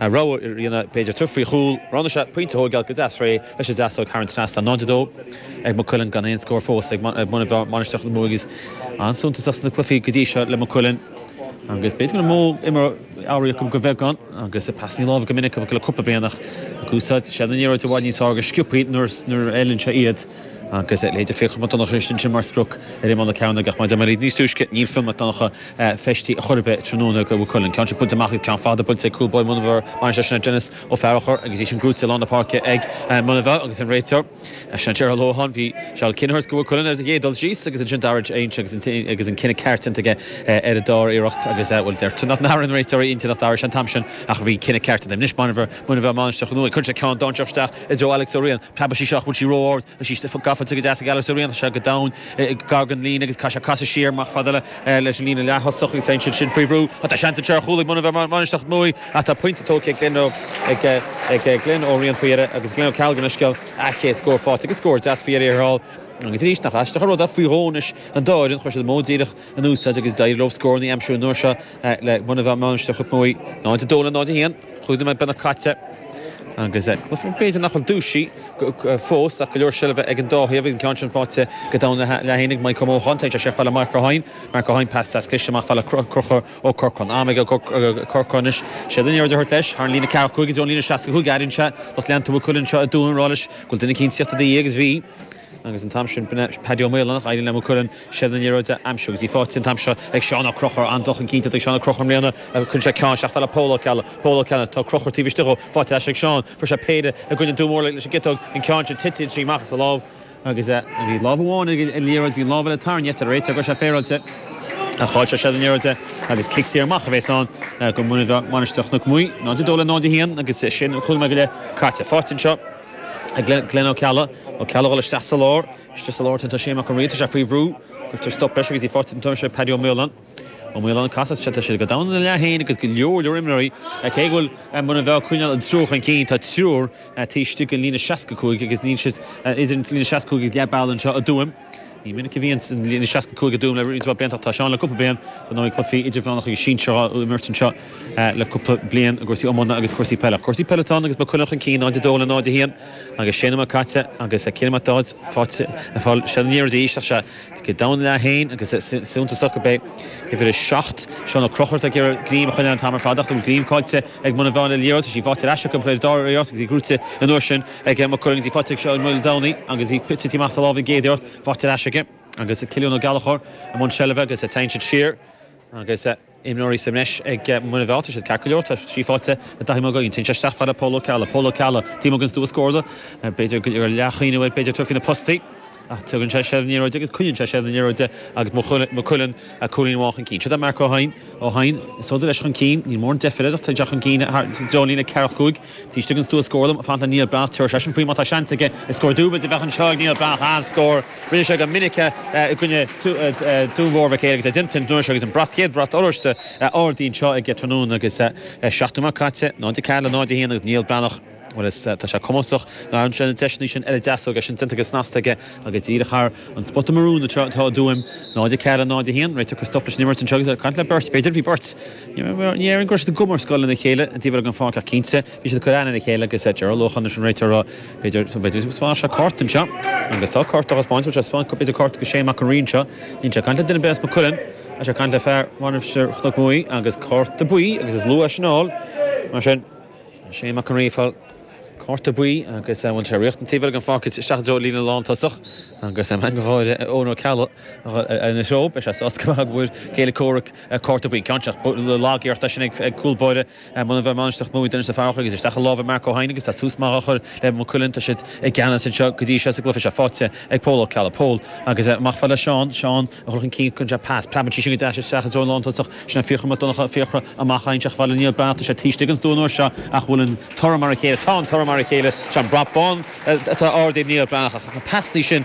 An raibh ar Ríona b'fhéidir tabhairt faoi chúl? Roghnaigh sé pointe a thóigeáil go deas réidh leis an deasóig thar an trasnán tá 0-2 ag Maigh Cuilinn gan aon scór fós ag Muine Mheá Mainistir Chnoc Muaidhe is an-suntasach sna cluichí go dtí seo le Maigh Cuilinn agus b'fhéidir go raibh modh imeartha amhraí acu go bheagán agus pasannaí láimhe go minic acu le cúpla bliain ach úsáid siad an liathróid i bhfad níos fearr níos sciopthaí nuair nuair a fheileann sé iad agus b'fhéidir Fiachra Mac Donnacha isteach ansin mar sprioc ar imeall na cearnóige ach má d'imir siad níos túisce níl Fionn Mac Donnacha feistithe ar chor ar bith tráthnóna do Mhaigh Cuilinn. Ceann fada buailte amach agus ceann fada buailte ag cúl báire Mhuine Mheá, mar sin, sin Denis Ó Fearachair agus í sin gnóite i lár na páirce ag Muine Mheá agus an réiteoir, sin Gerald Lohan. Bhí sé ag cinnireacht do Mhaigh Cuilinn ar an gcéad dul síos agus ansin d'athraigh a aigne agus agus an cinneadh ceart déanta aige ar an dara hiarracht agus bhuel deir daoine nár an réiteoir a intinn a athrú an t-am sin ach bhí cinneadh ceart déanta. Anois Muine Mheá, Muine Mheá Mainistir Chnoc Muaidhe, cuireann sé ceann dainséarach isteach i dtreo Alex Ó Riain. Preabfaidh sí seo ach bhfuil sí ró ard agus sí gafa go deas ag Alex Ó Riain tá sé go domhain gar don líne agus caithfidh sé casadh siar amach fad le leis an líne leath-thosach agus é siúd sin faoi bhrú. Ach tá seans anseo ar chúl ag Muine Mheá Mainistir Chnoc Muaidhe ach tá pointe tógtha ag Glenn ag Glenn Ó Riain faoi dheireadh agus Glenn Ó Ceallaigh gabh mo leithscéal an chéad scór fáighte agus scór deas faoi dheireadh ar fháil agus arís nach aisteach an rud é faoi dhó anois an dá fhoireann chuir siad an modh díreach in úsáid agus d'éirigh leo scóranna a aimsiú an uair seo le Muine Mheá Mainistir Chnoc Muaidhe. 0-2 le 0-1. Cúig nóiméad beagnach caite agus b'fhéidir nach bhfuil dúisithe fós ach go leor seilbhe ag an dá thaobh, an ceann sin fáighte go domhain ina leath fhéin ag Maidhc Ó Mócháin, tugann sé fad le Mark Ó hEidhin, Mark Ó hEidhin pas deas cliste amach fad le Conchúr Ó Corcráin, am ag Ó Corcráin anois, sé in ann í a thabhairt leis, thar an líne ceathracha cúig, i dtreo an líne seasca cúig airíonn sé lucht leanta Mhaigh Cuilinn anseo i dTuaim ag rá leis go bhfuil duine eicínt ag tíocht agus bhí. Agus an t-am sin b'in Paddy Ó Maoláin d'éirigh le Maigh Cuilinn seilbh na liathróide a aimsiú agus í fáighte an t-am seo ag Seán Ó Conchúir. An-dul chun cinn déanta ag Seán Ó Conchúir i mbliana agus cuireann sé ceann isteach fad le Pól Ó Ceallaigh. Pól Ó Ceallaigh, tá Ó Conchúir taobh istigh dhó, fáighte ar ais ag Seán, fuair sé péire i gcoinne Dún Mór leis an gciotóg, an ceann sin tite inti amach as a lámh, agus bhí lámh amháin ar an liathróid, bhí an lámh eile tarraingthe dar leis an réiteoir go raibh sé féaráilte, ach chaill sé seilbh na liathróide agus cic saor amach a bhéas ann do Mhuine Mheá Mainistir Chnoc Muaidhe 0-2 le 0-1 agus sin cúig nóiméad go leith caite. Fáighte anseo. Glenn Ó Ceallaigh. Ó Ceallaigh ag dul isteach sa lár. Istigh sa lár tá Seán Mac an Ríogh. Tá sé faoi bhrú. Cuirtear stop leis agus í fáighte an t-am seo ag Paddy Ó Maoláin. Ó Maoláin, Caithfidh sé tá siad go domhain ina leath fhéin agus go leor leor imreoirí cé go bhfuil Muine Mheá ag coinneáil an triúr chun cinn tá triúr taobh istigh den líne seasca cúig agus níl siad idir an líne seasca cúig agus leath bealaigh anseo i dTuaim. Ní minic a bhíonns an líne 65 i dTuaim le roinnt mhaith blianta ach tá sé ann le cúpla bliain. Dar ndóigh, cluichí idirmheánacha agus sinsearacha á imirt anseo le cúpla bliain, i gcúrsaí iomána agus cúrsaí peile. Cúrsaí peile atá ann agus Maigh Cuilinn chun cinn 0-2 le 0-1 agus sé nóiméad caite agus Cillian Mac Dáibhéid fáighte aniar de dhísreach. Sé thíos go domhain ina leath féin agus suntasach go beidh uimhir a seacht, Seán Ó Conchúir atá ag iarraidh greim a choinneáil an t-am ar fad ach tá greim fáighte ag Muine Mheá ar an liathróid. Tá sí fáighte ar ais acu, b'fhéidir, dár fheabhas agus í gnóite an uair sin. Ag am a cur agus í faighte ag seo Ó Maoldomhnaigh agus í ag titim amach sa lámh aige ach í faighte ar ais aige agus Cillian Ó Gallchóir i mbun seilbhe agus ag teannadh siar agus imreoirí sa mbreis ag Muine Mheá tá siad ceart go leor tá trí faighte i dtaithí maith againn. Téann sé isteach fad le Pól Ó Ceallaigh. Pól Ó Ceallaigh, taobh amuigh den stua scórála b'fhéidir go raibh leathchuimhneamh air b'fhéidir tabhairt faoi na postaí. Ach tugann sé seilbh na liathróide agus coinníonn sé seilbh na liathróide agus Maigh Cuilinn cúilín amháin chun cinn. Siod é Mark Ó hEidhin. Ó hEidhin, siúd leis chun cinn. Níl mórán deifir air ach téann sé chun cinn i dtreo an líne ceithre chúig. Taobh istigh den stua scórála. Faighte ag Neil Breathnach, tabharfaidh seisean faoi má tá seans aige is scór dúbailte a bheadh anseo ag Neil Breathnach. An scór! Rinne sé go minic é i gcoinne Dún Mór Mhic Éil agus é déanta an tráthnóna seo agus an brat, chéad bhrat oráiste a ardaíodh anseo tráthnóna agus seacht nóiméad caite. 0-4 le 0-1 agus Neil Breathnach. Bhuel is tá sé cumasach. Ghearrann sé na deiseannaí sin ar an deasóig, é sin déanta go snasta aige agus díreach thar an spota marún atá a d'fhuaim. 0, 4, 0, 1. Réiteoidh Chris Duffy leis an imirt anseo agus é ag caint le Bert, b'fhéidir? Bhí Bert. Ní déarfainn go raibh siad i gcomhar scoile lena chéile i dtaobh ar an pháirc ach cinnte bhí siad ag cur aithne ar a chéile agus é Gerald Lócháin leis an réiteoir a b'fhéidir, b'fhéidir go spáinfeadh sé cárta anseo. Agus tá cárta á thaispeáint, bhfuil sé ag spáint b'fhéidir cárta go Shane Mac an Rí anseo. Níl sé ag caint le duine ar bith as Maigh Cuilinn. Tá sé ag caint le fear Mhainistir Chnoc Muaidh agus cárta buí agus is lú é sin a fháil. Mar sin. Shane Mac an Rí ag fáil cárta buí agus bhí sé ag tíocht an taobh eile den pháirc isteach i dtreo líne lántosach agus Eoghan Ó Ceallaigh ina threo. Beidh sé sásta go mbeidh ar a chéile comhraic cárta buí ceann seach. Lag iarracht é sin ag cúl báire Mhuine Mheá Mainistreach, Denis Farragher. Isteach i lámha Mark Ó hEidhin agus tá tús maith á chur le Maigh Cuilinn. Tá siad i gceannas anseo go dtí seo sa gcluiche seo. Faighte ag Pól Ó Ceallaigh. Pól, agus amach fad le Seán. Seán. a chur chun cinn go ndéanfadh pas. Preabann sí sin go deas isteach i dtreo an lántosach. Sin an Fiachra Mac Donnchadha, Fiachra amach faighte amach fad le Neil Breathnach tá sé taobh istigh den stua an uair seo ach bhfuil an toradh mar a chéile? Tá an toradh mar a chéile. Is é an brat bán atá ardaithe Neil Breathnach na pasannaí sin.